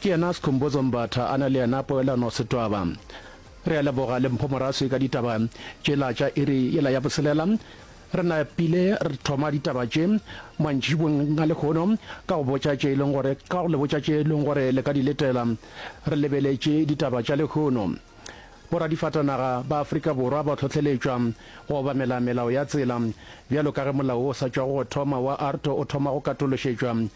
Ke yena Skhumbuzo Mbatha a na le yena poelano Setwaba. Re a leboga le Mpho Moraswi ka ditaba tšela tša iri yela ya boselela. Re napile re thoma ditaba tše mantšibong a lehono ka go botša tše e leng gore ka go le botša tše e leng gore le ka di letela. Re lebeletše ditaba tša lehono. Boradifatanaga ba Afrika Borwa ba hlohleletšwa go obamela melao ya tsela bjalo ka ge molao o sa tšwago go thoma wa ARTO o thoma go katološetšwa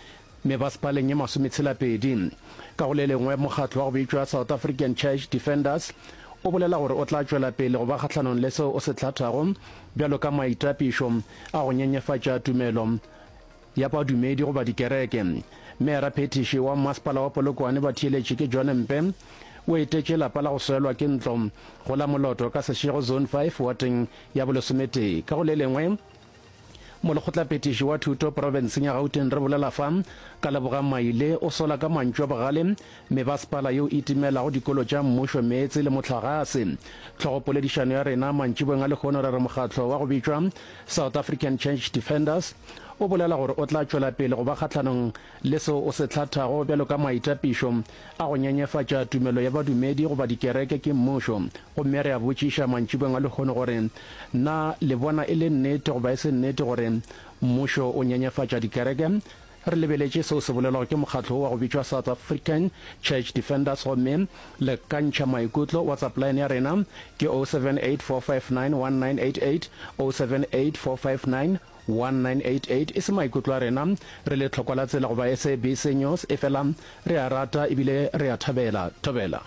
Mebasepaleng e masometshela-pedi ka go le lengwe, mokgatlo wa go bitšwa South African Church Defenders o bolela gore o tla tšwela pele go ba kgahlanong le seo o se hlathago bjalo ka maitapišo a go nyenyefatša tumelo ya badumedi goba dikereke. Meera-phethiši wa Mmasepala wa Polokwane ba theeletše ke John Mpe o etetše lapa la go swelwa ke ntlo go la Moloto ka Seshego Zone 5 wateng ya bolesometee ka go le lengwe Molekgotlaphethiši wa Thuto profenseng ya Gauteng re bolela fa ka Lebogang Maile o sola ka mantšu a bogale mebasepala yeo e timelago dikolo tša mmušo meetse le mohlagase. Tlhogopoledišano ya rena mantšiboeng a lehono re re mokgatlo wa go bitšwa South African Church Defenders o bolela gore o tla tšwela pele go ba kgahlanong le seo o se hlathago bjalo ka maitapišo a go nyenyefatša tumelo ya badumedi goba dikereke ke mmušo Gomme re a botšiša mantšibeng a lehono gore, Na le bona e le nnete goba e se nnete gore mmušo o nyenyefatša dikereke? Re lebeletše seo se bolelwago ke mokgatlo wo wa go bitšwa South African Church Defenders gomme le kantšha maikutlo. WhatsApp line ya rena ke 0784591988, 0784591988. E se maikutlo a rena re le tlhokwa la tsela goba SABC News, efela re a rata ebile re a thabela. Thobela.